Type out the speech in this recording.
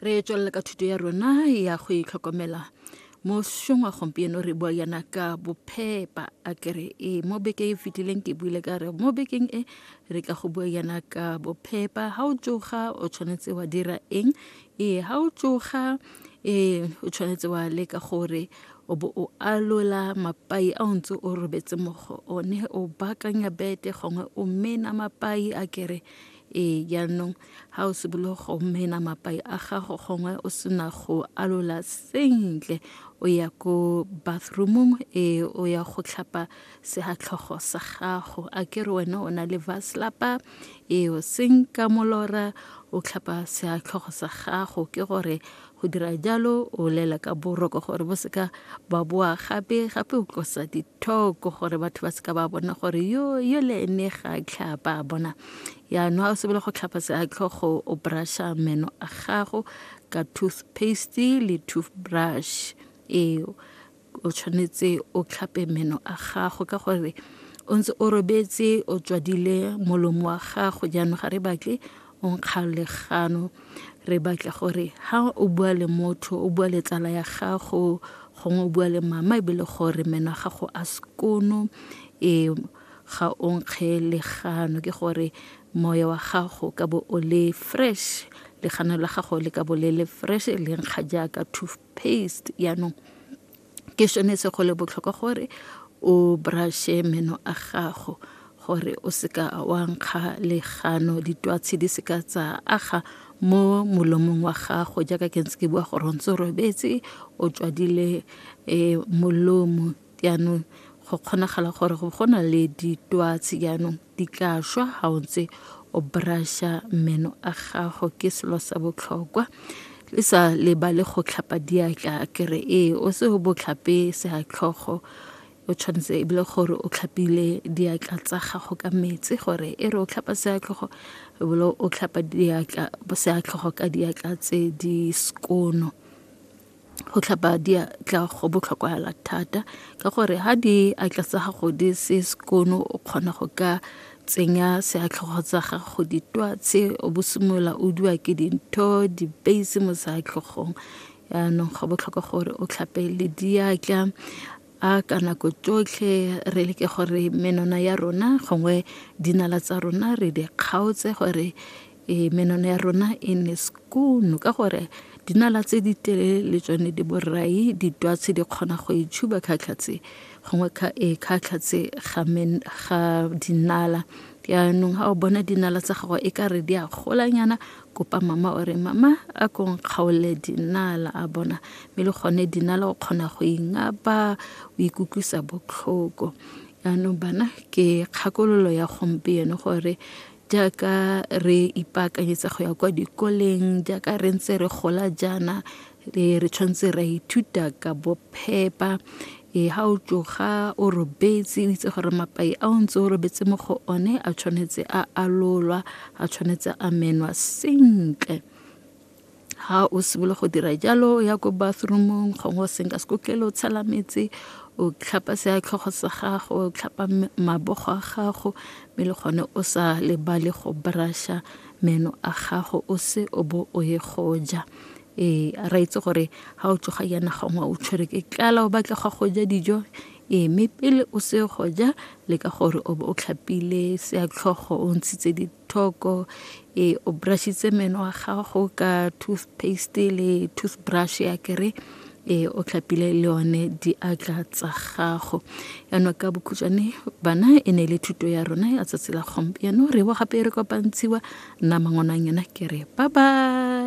re tswelela ka thuto ya rona ya go itlhokomela mo šong wa gompieno re bua yana ka bophepa a kere e mo bekeng e fetileng ke buile ka re mo bekeng e re tla go bua yana ka bophepa ga o tsoga o tshwanetse wa dira eng ee ga o tsoga ee o tshwanetse wa leka gore o bo o alola mapai a o ntse o robetse mo go one o bakanya bete gongwe o mena mapai a kere ee jaanong ga o sebolo go mena mapai a gago gongwe o sena go alola sentle o ya ko bathroomong e o ya go tlhapa segatlhogo sa gago a ke re wena o na le vaslapa e o senka molora o tlhapa segatlhogo sa gago ke gore Go dira jalo o lela ka boroko gore bo seka ba boa gape gape o tlosa dithoko gore batho ba seka ba bona gore yo yo le ene ga a tlhapa a bona yaanong a o sebele go tlhapa seatlhogo o brusha meno a gago ka toothpaste le toothbrush eo o tshwanetse o tlhape meno a gago ka gore o ntse o robetse o tswadile molomo wa gago jaanong ga re batle o nkga legano re batla gore ha o bua le motho o bua le tsala ya gago gongwe o bua le mama ebile gore meno a gago a sekono e ga o nkge legano ke gore moya wa gago ka bo o le fresh legano la gago le ka bo le le fresh le nkga jaaka paste yaanong ke sone se go le botlhokwa gore o brush-e meno a gago gore o seka wa nkga legano ditwatshi di seka tsa aga mo molomong wa gago jaaka ke ntse ke bua gore o ntse o robetse o tswadile um molomo jaanong go kgonagala gore go na le ditwatsi jaanong. Di tla šwa ga o ntse o brasha meno a gago ke selo sa botlhokwa le sa lebale go tlhapa diatla kere ee o se o botlhape seatlhogo o tshwanetse e bile gore o tlhapile diatla tsa gago ka metsi gore e re o tlhapa seatlhogo e bile o tlhapa diatla seatlhogo ka diatla tse di skono go tlhapa diatla go botlhokwahala thata ka gore ha di atla tsa gago di se sekono o kgona go ka tsenya seatlhogo tsa gago ditwatse o bo simolola o dua ke dintho dipeisi mo seatlhogong yaanong go botlhokwa gore o tlhape le diatla a ka nako tsotlhe re leke gore menwana ya rona gongwe dinala tsa rona re di kgaotse gore Ee, menwana ya rona e ne skoon ka gore dinala tse di telele le tsone di borai ditwatshi di kgona go e tshuba khatlhatse gongwe e khatlhatse ga dinala yaanong ga o bona dinala tsa gago e ka re di a golanyana kopa mama o re mama a kong kgaole dinala a bona mme le gone dinala o kgona go ingapa o ikutlwisa botlhoko yaanong bana ke kgakololo ya gompieno gore jaaka re ipaakanyetsa go ya kwa dikoleng jaaka re ntse re gola jaana e re tshwanetse ra ithuta ka bophepa e ha o tsoga o robetse o itse gore mapai a o ntse o robetse mo go one a tshwanetse a alolwa a tshwanetse a menwa sentle ha o simolola go dira jalo ya ko bathroomong gongwe o senka sekotlele o tshela metsi o tlhapa se ya tlhogo sa gago o tlhapa mabogo a gago mme le gone o sa lebale go brusha meno a gago o se o bo o ye go ja ee a ra itse gore ga o tsoga yana gongwe o tshwere ke tlala o batla ga go ja dijo ee mme pele o se go ja le ka gore o bo o tlhapile se ya tlhogo o ntshitse thoko e o brushitse meno a gago ka toothpaste le toothbrush ya kere e o tlhapile le one diatla tsa gago yaanong ka bokhutšwane bana e ne e le thuto ya rona ya tsatsi la gompieno re bo gape e re kopantshiwa nna mangwanang yona kere ba ba